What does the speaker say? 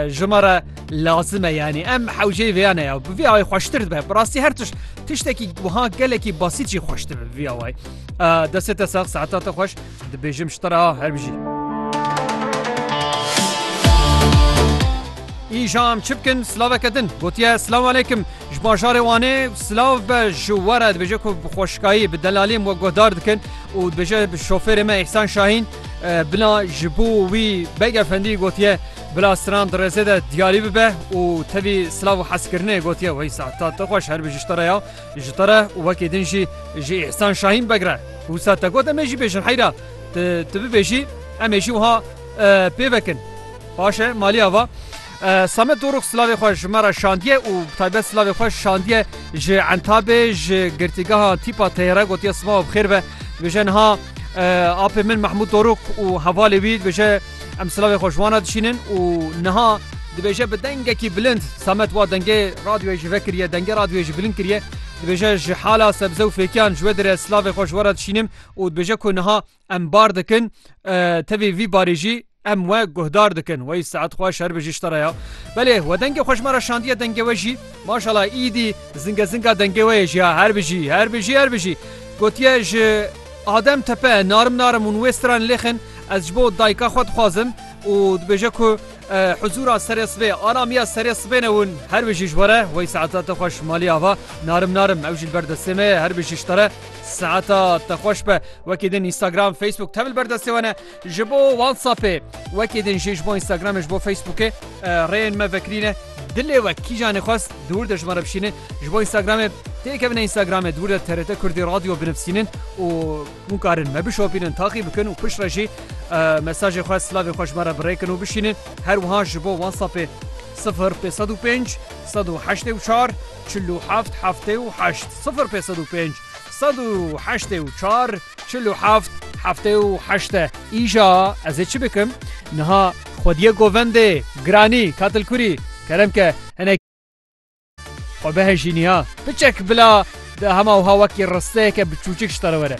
Ji me re lazim e yanî em hewceyê vêya ne ya bi vê awayî xweştir dibe bi rastî her tişt tiştekî wiha gelekî basît jî xweş dibe bi vê awayî destê te sax saeta te xweş dibêjim ji te re ha her bijî Îjam çi bikin silaveke din gotiye silav alekim ji bajarê wanê silav be ji were dibêje ku bi xweşkayî bi delalîm we guhdar dikin û dibêje bi şofêrê me îhsan şahîn Bila ji bo wî Beg Efendî gotiye bila stran di rêzê de diyarî bibe û tevî silav û hezkirinê gotiye Weysa ta te xweş herbi ji te re ya ji te re û wekî din jî ji Îhsan Şahîn Beg re. Wisa te got em ê jî bêjin heyra tu bibêjî em ê jî wiha pê vekin. Paşe malî ava. Samet Dorûx silavê xwe ji me re şandiye û bi taybet silavê xwe şandiye ji Entabê, ji Girtîgeha Tîpa Teyêre gotiye sivawa bi xêr ve. Dibêje niha apê min Mehmûd Dorûx û hevalê wî dibêje em silavê xwe ji wan re dişînin û niha dibêje bi dengekî bilind Samet wa dengê radyoyê jî vekiriye, dengê radyoyê jî bilind kiriye. Dibêje ji hala sebze û fêkiyan ji wê dire silavê xwe ji we re dişînim û dibêje ku niha Em bar dikin tevî vî barî jî em we guhdar dikin wey saet xwe şer bi jiştara ya Belê we dengê xweş me ra şandiye dengê we jî maşala îdî zinge zinga dengê we jî her bijî her bijî her bijî gotiye ji Adem tepe narim narim û wê stran lêxin ez ji bo dayika xwe dixwazim û dibêje ku huzura serê sibê alamiya serê sibê newin her bijî ji were wey saeta te xweş malî ava narim narim ew jî berdestê me her bijî ji te re Saeta te xweş be wekî din Instagram, Facebook te bil berdestê we ne ji bo WhatsAppê wekî din jî ji bo Instagramê ji bo Facebookê rêyên me vekirîne dilê we kîjanê xwest dûr de ji me re bişînin ji bo Instagramê têkevine Instagramê dûr de TRT Kurdî radyo binivsînin û hûn karin me bişopînin taxî bikin û pişt re jî mesajê xwe slavê xwe ji me re birêkin û bişînin her wiha ji bo WhatsAppê 0505 184 Çil û heft heftê û heşt sifir pê sed û pênc sed û heştê û çar. Çil û heft heftê û heşt e. Îja ez ê çi bikim? Niha xwedîye govendê, giranî, katilkurî, kerem ke hinek. Xwe bihejînî ha. Piçek bila di hema wiha wekî risteyeke biçûçik ji te re were.